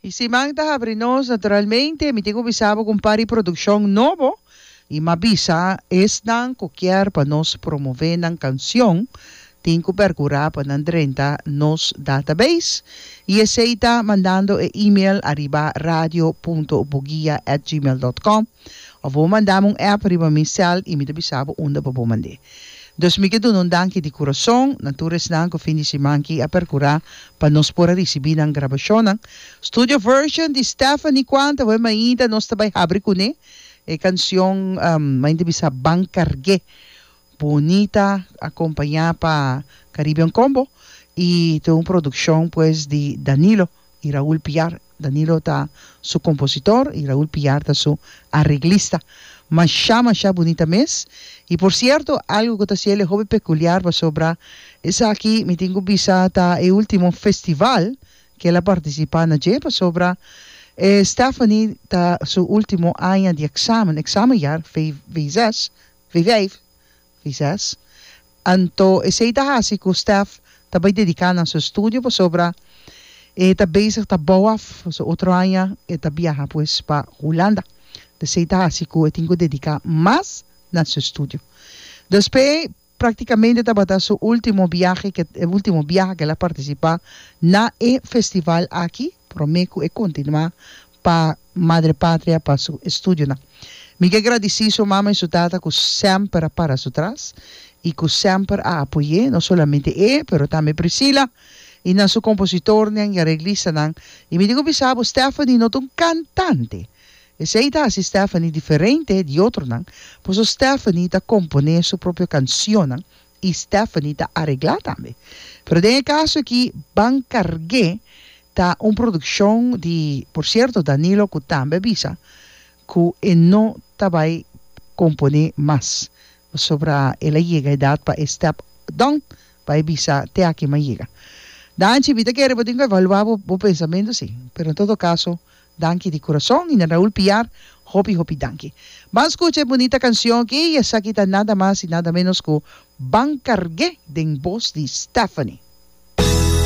E siman ta habri nos naturalmente mi tin cu bisa bo cu un par di produccion nobo y m'a bisa esnan cu kier pa nos promove nan cancion tin cu percura pa nan drenta nos database y esey ta mandando e email ariba radio punto bugia at gmail dot com Of bo manda mi un app riba mi cel y mi ta bisa bo unda pa bo mand'e. Dus mi ke duna un danki di curason na tur esnan cu fin di siman ki a percura pa nos por a ricibi nan grabacionnan. Studio version di Stephanie Cuanta we mainta nos ta bay habri cune e cancion, mainta bisa Ban Cargue Bonita a compaña pa Caribbean Combo y ta un produccion pues di Danilo y Raul Piar. Danilo ta su compositor y Raul Piar ta su arreglista. Masha masha bonita mes y por cierto algo cu ta haci el'e hopi peculiar pasobra esaki mi tin cu bisa ta e ultimo festival que el a participa na dje pasobra e Stephanie ta su ultimo aña di examen, examenjaar, VWZ, Vijf, Vijzes, Anto esei ta hasi ku Stef ta bai dediká na su estudio pasobra e ta bezig ta bou af, so otro aña e ta biaha pues pa Hulanda. Esei ta hasi ku e tin ku dediká mas na su estudio. Dus p'e praktikamente tabata su último biahe, ke e último biaha ku el a partisipá na e festival aki promé ku e kontinuá pa Madre Patria pa su estudionan. Mi ke gradici su mama y su tata cu semper a para su tras y cu semper a apoye, no solamente e, pero tambe Priscila y nan su compositornan y areglistanan. Y mi tin cu bisa bo, Stephanie no ta un cantante, esey ta haci Stephanie diferente di otronan, paso Stephanie ta compone su propio cancionnan y Stephanie ta aregla tambe. Pero den e caso aki Ban Cargué ta un produccion di por cierto Danilo cu tambe a bisa cu e no ta bay compone mas pasobra el a yega edad pa e step down bay bisa te aki m'ha yega. Danchi mi ta kere bo tin cu evalua bo bo pensamento si pero en todo caso Danki di kurason Nina Raul Piar hopi hopi danki. Ban skucha e bunita kanshon aki i esaki ta nada mas i nada menos ku Ban Karg'é den bos di Stephanie.